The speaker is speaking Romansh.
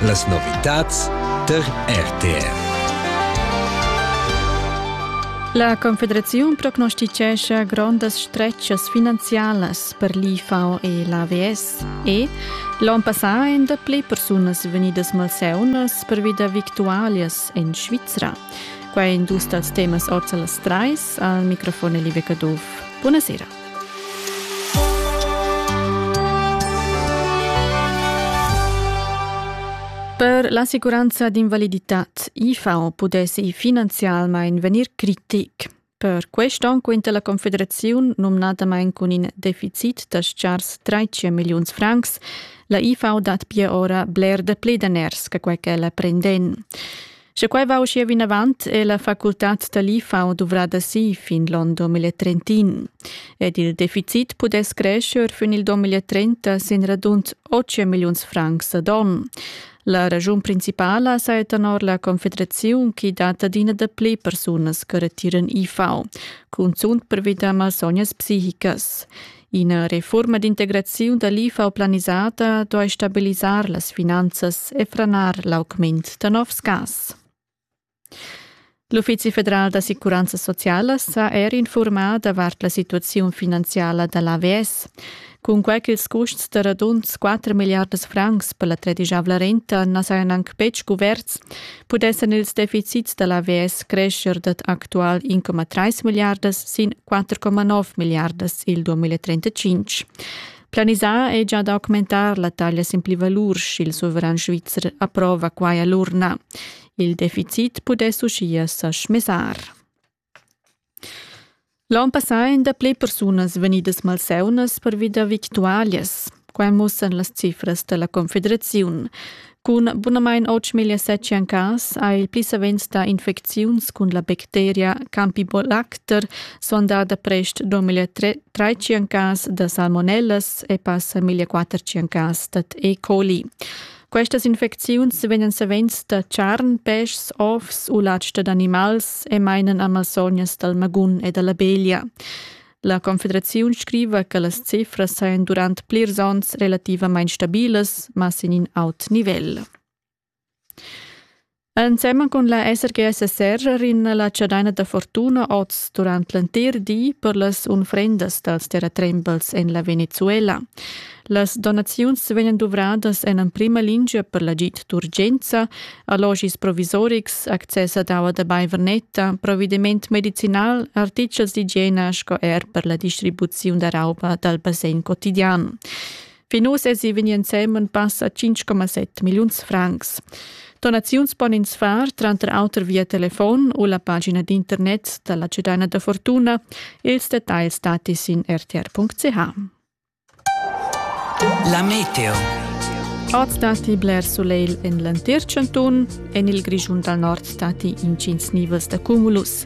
Las novitads tar RTR. La Confederaziun prognosticescha grondas stretgas finanzialas per l'IFAO e l'AVS e l'onn passà èn dapli persunas vegnidas malseunas pervi da victualias en Svizra. Quai è in dus dals temas ord las trais. Al microfon è Liebe Caduff. Buonasera. Per l'assicuranza d'invaliditad IFAO pudess ei finanzialmein vegnir critic. Per quest onn quinta la Confederaziun, nomnadamain cun in deficit da stgars 13 milliuns francs, la IFAO dat pia ora bler da pli daners che quei che la prenden. Sche quai va uschia vinavant, è la facultad da l'IFAO duvrada si fin l'onn 2030. Ed il deficit pudess crescer fin il 2030 sin radund 8 milliuns francs ad onn. La ragiun principala sa tenor la Confederaziun che dat adina dapli persunas che retiran IFAO, cunzunt per vita malsognas psichicas. Ina reforma d'integraziun da l'IFA planisata duai stabilisar las finanzas e franar l'augment da novs gas. L'Uffizi federal d'assicuranza sociala s'ha er informà davart la situaziun finanziala da l'AVS. Cunquai ch'ils custs da radund 4 milliardas francs per la tredisavla renta na sajan anc betg cuverts, pudessan ils deficits da l'AVS crescher dad actual 1,3 milliardas sin 4,9 milliardas il 2035. Planisà è già d'augmentar la taglia sin plivalur, sch'il suveran svizzer approva quai a l'urna. Il deficit pudess uschia sa schmesar. L'on passà ein dapli persunas vegnidas malseunas pervi da victualias. Quai mussan las cifras dalla Confederaziun. Cun bunamain 8.700 cas ha il pli savens dà infecziuns cun la bacteria Campibolaster sondada prest 2.300 cas da salmonellas e passa 1.400 cas dad E. coli. Questas infecziuns vegnan savens da charn, peschs, ovs u latg dad animals e mainan a malsognas dal magun e da la beglia. La Confederaziun scriva che las cifras sajan durant plirs onns relativamain stabilas, ma sin in aut nivel. Ensemen cun la SRGS Serra rinna la chadaina da fortuna oz durant l'entir di per las unfrendas dals terratrembels en la Venezuela. Las donaziuns vegnan duvradas en emprima lingia per l'agid d'urgenza, allogis provisorics, access ad aua da baivernetta, provvediment medicinal, artichels d'igiena sco er per la distribuziun da rauba dal basegn quotidian. Fin uss èsi vegnì ensemen passa 5,7 milliuns francs. Donaziuns pon ins far tranter auter via telefon u la pagina d'internet da la Cedina da Fortuna. Ils dettagls dati sin rtr.ch. La meteo. Oz datti bler sulegl en l'entir chantun. En il Grischun dal nord datti intgins nivels da cumulus.